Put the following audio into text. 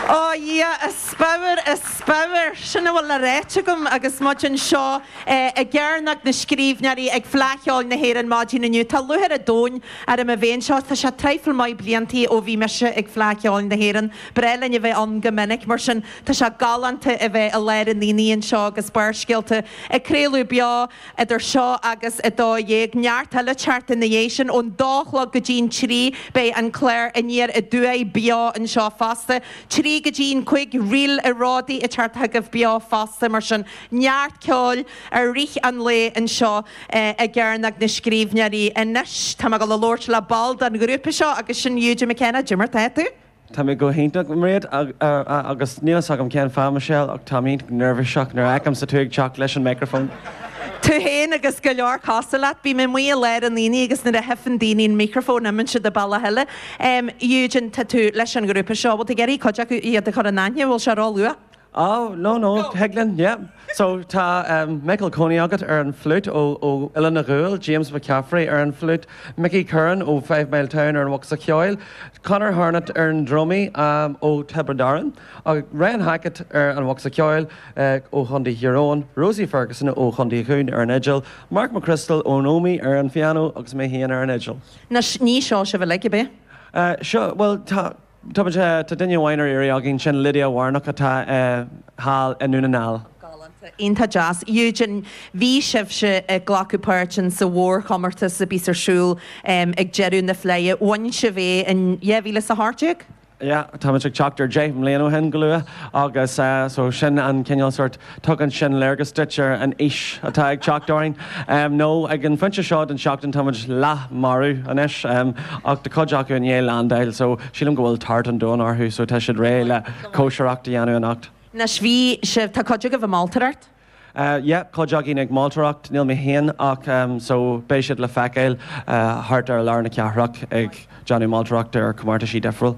Ó a Dhia, a spadhar, a spadhar! Sin a bhfuil le ráit agam agus muid anseo i gcearnóg na scríbhneoirí ag Fleadh Cheoil na hÉireann maidin inniu. Tá lúchair an domhain orm a bheith anseo. Tá sé traidhfil maith bliantaí ó bhí mise ag Fleadh Cheoil na hÉireann. Ba ghnách linn a bheith ann go minic, mar sin tá sé galánta a bheith i lár an aonaigh anseo agus Barrscéalta ag craoladh beo. idir seo agus a dó dhéag, neart eile ag teacht ina dhiaidh sin, ón dó a chlog go dtí an trí, beidh an clár Aniar Aduaidh beo anseo fosta, trí go dtí an cúig, ríl i ród ag teacht chugaibh beo fosta, mar sin, neart ceoil i rith an lae anseo i gCearnóg na Scríbhneoirí. Anois, tá mé ag dul a labhairt le ball den ghrúpa seo agus sin Eugene McKenna. Cad é mar atá tú? Tá mé go hiontach, go raibh maith agat, agus níl fhios agam cén fáth, Michelle, ach táim iontach neirbhíseach nuair a fheicimse tú ag teacht leis an micreafón. Tú féin agus go leor cosúil leat. Bím amuigh i lár an aonaigh agus nuair a chífeann daoine an micreafón imíonn siad an bealach eile. Eugene, tá tú leis an ghrúpa seo, bhfuil tú ag iarraidh cuid acu iad a chur in aithne, bhfuil sé róluath? Ó, no, no, thig linn, yep. So, tá Michael Coney agat ar an flute ó Oileán an Ghuail, James McCaffrey ar an flute, Mickey Curran ó Fivemiletown ar an bhocsa cheoil, Conor Hartnett ar an drumaí ó Thiobraid Árann, Ryan Hackett ar an bhocsa ceoil ó Chontae Thír Eoghain, Rosie Ferguson ó Chontae Dhún ar an fhidil, Mark McCrystal ón Ómaigh ar an phianó agus mé féin ar an fhidil. Anois, ní seo sibh uilig, ab ea? Seo, bhuel, tá. Tá duine amháin ar iarraidh againn, sin Lydia Warnock atá thall i nDún na nGall. Galánta, iontach deas. Eugene, bhí sibhse ag glacadh páirt in sa mhórchomórtas a bíos ar siúl ag deireadh na Fleidhe. Bhain sibh é in dhá mhíle 's a hocht déag? Yeah, táimid ag teacht ar deich mbliana ó shin go luath agus so sin an cineál sórt Tugann sin léargas duit ar an aois atá ag teacht orainn, nó ag an phointe seo den seachtain táimid leath marbh anois, ach tá cuid acu i ndiaidh landáil so sílim go bhfuil tart an domhain orthu so tá siad réidh le cóisireacht a dhéanamh anocht. Anois, bhí sibh, tá cuid agaibh ag moltóireacht? Yeah, cuid againn ag moltóireacht, níl mé féin ach so beidh siad le feiceáil thart ar lár na cathrach ag déanamh moltóireacht ar chomórtaisí difriúil.